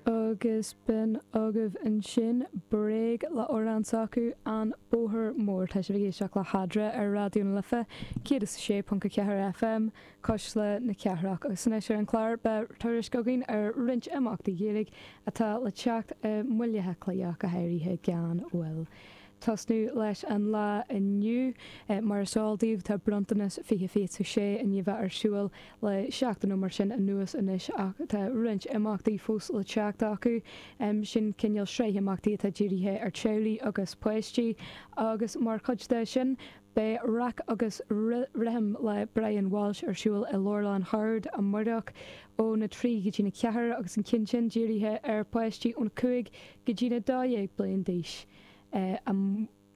Agus b'in agaibh ansin Bréag le amhrán s'acu, An Bóthar Mór. Tá sibh ag éisteacht le hEadra ar Raidió na Life 106.4 FM cuisle na cathrach. Agus anois ar an chlár beidh tuairisc againn ar roinnt imeachtaí Gaeilge atá le teacht i mBaile Átha Cliath, go háirithe gan mhoill. tosnú leis an lá inniu. Mar is eol daoibh tá Bronntanas 2026 i ndiaidh a bheith ar siúil le seachtain nó mar sin anuas anois ach tá roinnt imeachtaí fós le teacht acu. Sin cineál sraith imeachtaí atá dírithe ar teaghlaigh agus páistí agus mar chuid de sin beidh Rac agus Rithim le Brian Walsh ar siúl i Leabharlann Shoird amáireach ón 3 go dtí an 4 agus an ceann sin dírithe ar páistí ón 5 go dtí na 12 bliain d'aois.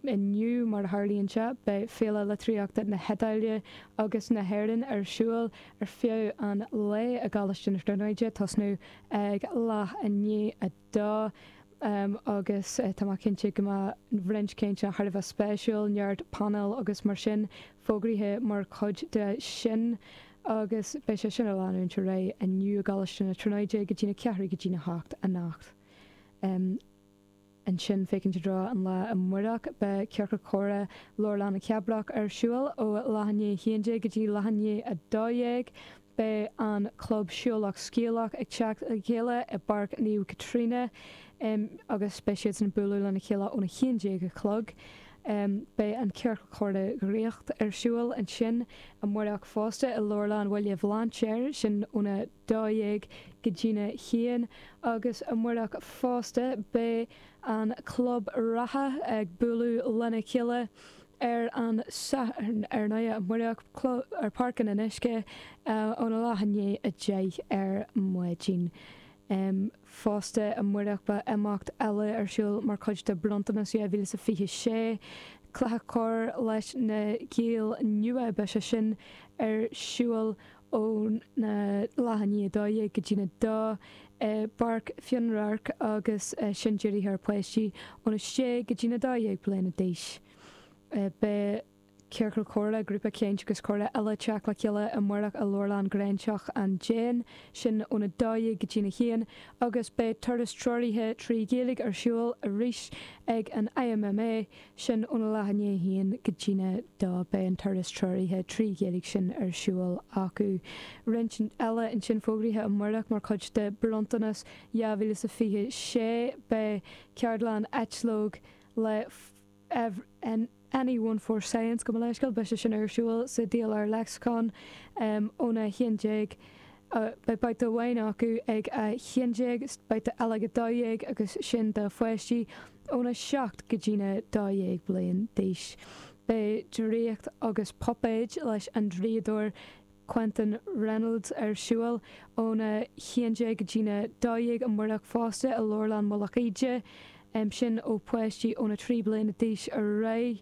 Inniu, mar a tharlaíonn sé, beidh Féile Litríochta na hIodáile agus na hÉireann ar siúl ar feadh an lae i gColáiste na Tríonóide, ag tosnú ag leath i ndiaidh a dó. Agus tá mé cinnte go mbeidh roinnt cainteanna thar a bheith spéisiúil, neart painéal agus mar sin, fógraithe mar chuid de sin. Agus beidh sé sin ag leanúint ar aghaidh inniu i gColáiste na Tríonóide go dtína ceathrú go dtína hocht anocht. ansin féachaint i dtreo an lae amárach. Beidh Ciorcal Comhrá Leabharlann na Cabrach ar siúl ó leath i ndiaidh 11 go dtí leath i ndiaidh a 12. Beidh an club Siúlach Scéalach ag teacht le chéile i bPáirc Naomh Caitríona agus beidh siadsan ag bualadh lena chéile óna haon déag a chlog. Beidh an Ciorcal Comhrá Dhraíocht ar siúl ansin amárach fosta i Leabharlann Bhaile Bhlainséir, sin óna. 12 go dtína haon agus amáireach fosta, beidh an club reatha ag bualadh lena chéile ar an Satharn, ar ndóigh, amáireach, ar Pháirc an Fhionnuisce óna leath i ndiaidh a deich ar maidin. Fosta, amáireach, beidh imeacht eile ar siúl mar chuid de Bronntanas 2026, cluiche corr leis na Gaeil Nua, beidh sé sin ar siúl óna leath i ndiaidh 12 go dtí an 2 i bPáirc Fionnradhairc agus sin dírithe ar pháistí ón 6 go dtí an 12 bliana d'aois. Beidh Ciorcal Comhrá, Grúpa Caint agus Comhrá eile ag teacht le chéile amáireach i Leabharlann Ghráinseach an Déin, sin ón 12 go dtí an 1, agus beidh turas treoraithe trí Ghaeilge ar siúl arís ag an IMMA. sin óna leath i ndiaidh a haon go dtína dó beidh an turas treoraithe trí Ghaeilge sin ar siúl acu. Roinnt eile ansin fógraithe amáireach mar chuid de Bronntanas 2026 beidh ceardlann eitleog le Anyone for Science gabh mo leithscéal beidh sé sin ar siúl sa DLR Lexicon ón 11 Beidh babhta amháin acu ag 11, babhta eile ag 12 agus sin do pháistí ó na 7 go dtí na 12 bliain d'aois. Beidh draíocht agus puipéid leis an draíodóir Quentin Reynolds ar siúl ó na 11 go dtí na 12 amáireach fosta i Leabharlann Mhullach Íde, sin ó pháistí ó na 3 bliana d'aois ar aghaidh.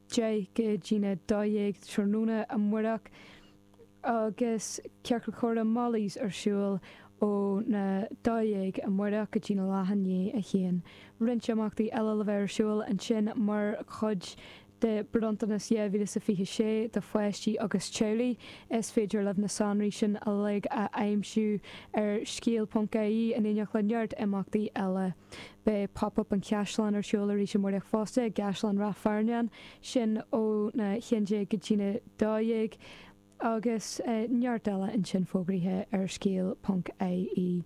10 go dtí na 12 tráthnóna amáireach agus Ciorcal Comhrá Molly's ar siúl ó na 12 amáireach go dtí na leath i ndiaidh a 1. Roinnt imeachtaí eile le bheith ar siúl ansin mar chuid de Bronntanas 2026 do pháistí agus teaghlaigh. Is féidir libh na sonraí sin uilig a aimsiú ar scéal.ie in éineacht le neart imeachtaí eile. Beidh Pop Up an Chaisleáin ar siúl arís amáireach fosta, i gCaisleán Ráth Fearnáin, sin ó na 11 go dtí na 12, agus neart eile ansin fógraithe ar scéal ponc IE.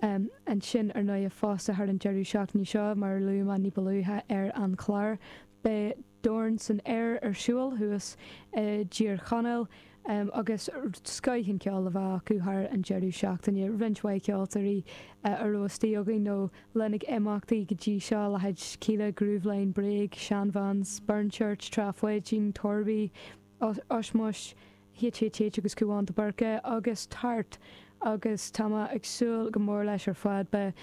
Ansin ar ndóighe fosta thar an deireadh seachtaine seo, mar a luadh mé ní ba luaithe ar an chlár, beidh. Dorn san Aer ar siúl thuas i dTír Chonaill agus scoith an ceol a bheith acu thar an deireadh seachtaine. Roinnt mhaith ceoltóirí a raibh istigh againn nó linn ag imeachtaí go dtí seo, leithéid Kíla, Grooveline, Bréag, Shan Vans, Burnchurch, Trá Pháidín, Torby, Ushmush, HHH agus Cúán de Búrca agus tart agus tá mé ag súil go mór leis ar fad. Beidh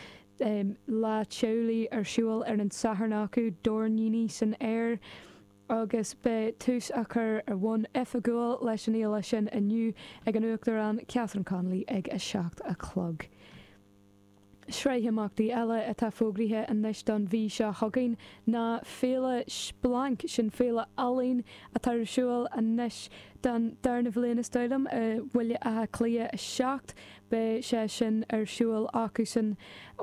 Lá Teaghlaigh ar siúl ar an Satharn acu, Doirníní san Aer agus beidh tús á chur ar bhonn oifigiúil leis an fhéile sin inniu ag an Uachtarán Catherine Connolly ag a seacht a chlog. Sraith imeachtaí eile atá fógraithe anois don mhí seo chugainn ná Féile Splanc. Sin féile ealaíon atá ar siúl anois don darna bhliain is dóigh liom, i mBaile Átha Cliath 7. Beidh sé sin ar siúl acusan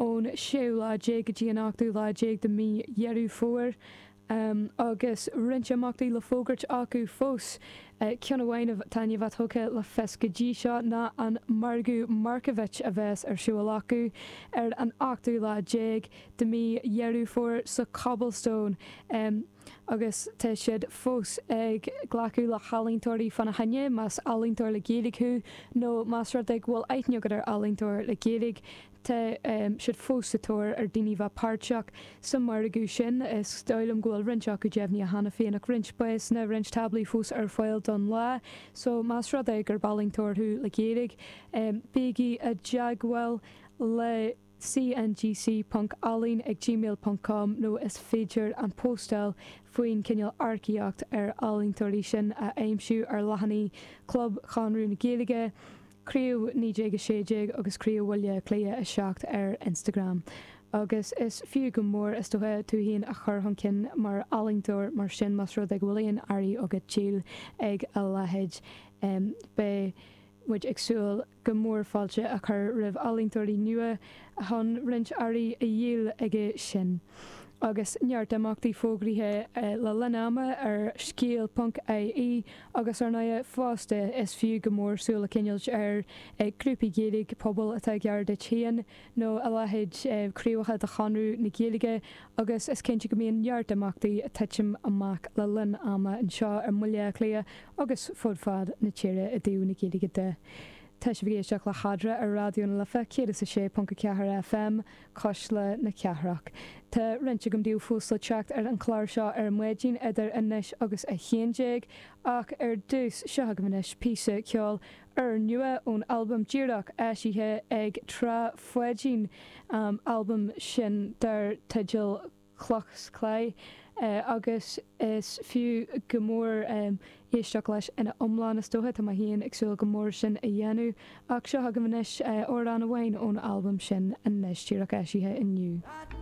ón séú lá déag go dtí an ochtú lá déag de mhí Dheireadh Fómhair. Agus roinnt imeachtaí le fógairt acu fós, ceann amháin atá i ndiaidh a bheith tugtha le fios go dtí seo ná an margadh Markievicz a bheas ar siúl acu ar an ochtú lá déag de mhí Dheireadh Fómhair sa Cobblestone agus tá siad fós ag glacadh le healaíontóirí fána choinne, más ealaíontóir le Gaeilge thú nó más rud é go bhfuil aithne agat ar ealaíontóir le Gaeilge. Tá siad fós sa tóir ar daoine bheith páirteach sa margadh sin. Is dóigh liom go bhfuil roinnt acu deimhnithe cheana féin ach roinnt spásanna, roinnt táblaí fós ar fáil don lá. So, más rud é gurb ealaíontóir thú le Gaeilge, bígí i dteagmháil le cngc ponc ealaín ag gmail ponc com nó is féidir an postáil faoin cineál earcaíocht ar ealaíontóirí sin a aimsiú ar leathanaigh Club Chonradh na Gaeilge, Craobh 1916 agus Craobh Bhaile Átha Cliath 7 ar Instagram agus is fiú go mór is dócha tú féin a chur chun cinn mar ealaíontóir mar sin más rud é go bhfuil aon earraí agat le díol ag a leithéid beidh muid ag súil go mór fáilte a chur roimh ealaíontóirí nua chun roinnt earraí a dhíol ag sin agus neart imeachtaí fógraithe le linn ama ar scéal ponc ie agus ar ndóigh fosta is fiú go mór súil a choinneáil ar ghrúpaí Gaeilge, pobail atá gar duit féin nó a leithéid, craobhacha de Chonradh na Gaeilge agus is cinnte go mbíonn neart imeachtaí ag titim amach le linn ama anseo i mBaile Átha Cliath agus fud fad na tíre i dtaobh na Gaeilge de. Tá sibh ag éisteacht le Hadra ar Raidió na Life 106.4 FM, Cuisle na Cathrach. Tá roinnt agam daoibh fós le teacht ar an chlár seo ar maidin idir anois agus a haon déag, ach ar dtús, seo chugaibh anois píosa ceoil úrnua ón albam díreach eisithe ag Trá Pháidín, albam sin dar teideal. cloch 's claí, agus is fiú go mór éisteacht leis ina iomlán is dócha, tá mé féin ag súil go mór sin a dhéanamh, ach seo chugaibh anois amhrán amháin ón albam sin anois, díreach eisithe inniu.